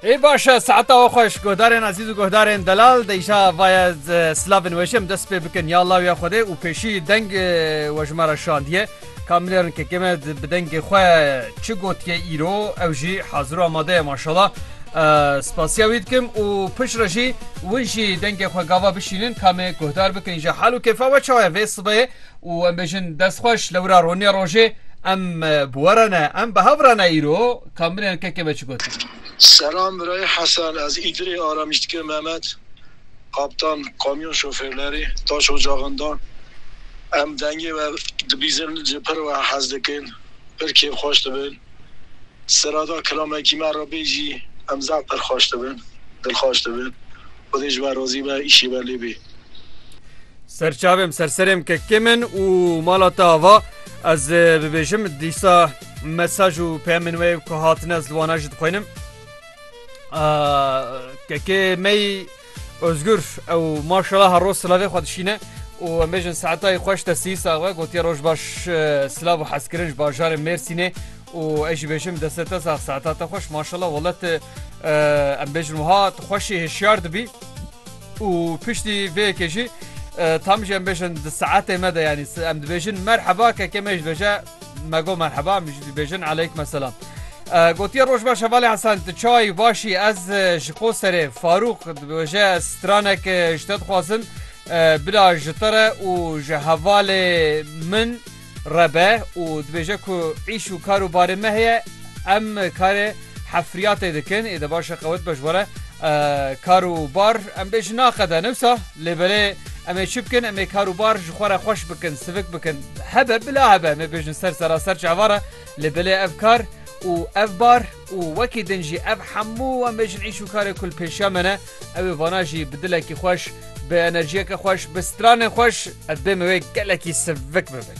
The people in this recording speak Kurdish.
Ê baş e seheta we xweş guhdarên ezîz û guhdarên delal deyşa vaye slavên weşê em dest pê bikin ya lawiya Xwedê û pêşî deng we ji me re şandiye ka min êrin kekê me bi dengê xwe çi gotiye îro ew jî hazir û amade ye maşala spasiya wî dikim û pişre jî win jî dengê xwe gava bişînin kamê guhdar bikin ji hal û kêfa we çawa ye vê sibê û em bêjin dest xweş li wira roniya rojê em bi we re ne em bi hev re ne îro kamirên kekê me çi gotin. Selam birayê Hesen ez Îdirê Aramîşdikê Memet Kaptan kamyon şofêrlerê taş ocaxinda em dengê we dibîzin ji pir we hez dikin pir kêf xweş dibin sirada kilamekî me re bêjî em zaf pir xweş dibin dilxweş dibin. Xwedê ji we razî be, îşê we lê bê. Serçavêm serserêm kekê min û mala te ava ez bibêjim dîsa mesaj û peyemên wê ku hatine ez li wana jî dixwînim. Kekê mey Özgür ew maşala her roz silavê xwe dişîne û em bêjin saetayê xweş te sî sawe gotiye roj baş silav û hezkirin ji bajarê Mêrsînê û ez jî bêjim deste te sax saeta te xweş maşallah wele te em bêjin wiha tu xweşî hişyar dibî û piştî vê yekê jî tam jî em bêjin di saetê me de yanî em dibêjin merheba keke me jî dibêje me go merheba em jî dibêjin eleyk meselam. Gotiye roj baş hevalê Hesan tu çayî başî ez ji qoserê Farûq dibêje stranek ji te dixwazim bila ji te re û ji hevalê min Rebe û dibêje ku îş û kar û barê me heye, em karê hefriyatê dikin, ê de baş e qewet be ji were kar û bar em bê ji naqede ne wisa lê belê em ê çi bikin em ê kar û bar ji xwe re xweş bikin sivik bikin hebe bila hebe em ê bêjin ser seraser çavan re lê belê ev kar û ev bar û wekî din jî ev hemû em bêjin îş û karê kulpêşiya me ne Ew ê vana jî bi dilekî xweş, bi enerjiyeke xweş, bi stranên xweş ez bêhme wê gelekî sivik bibin.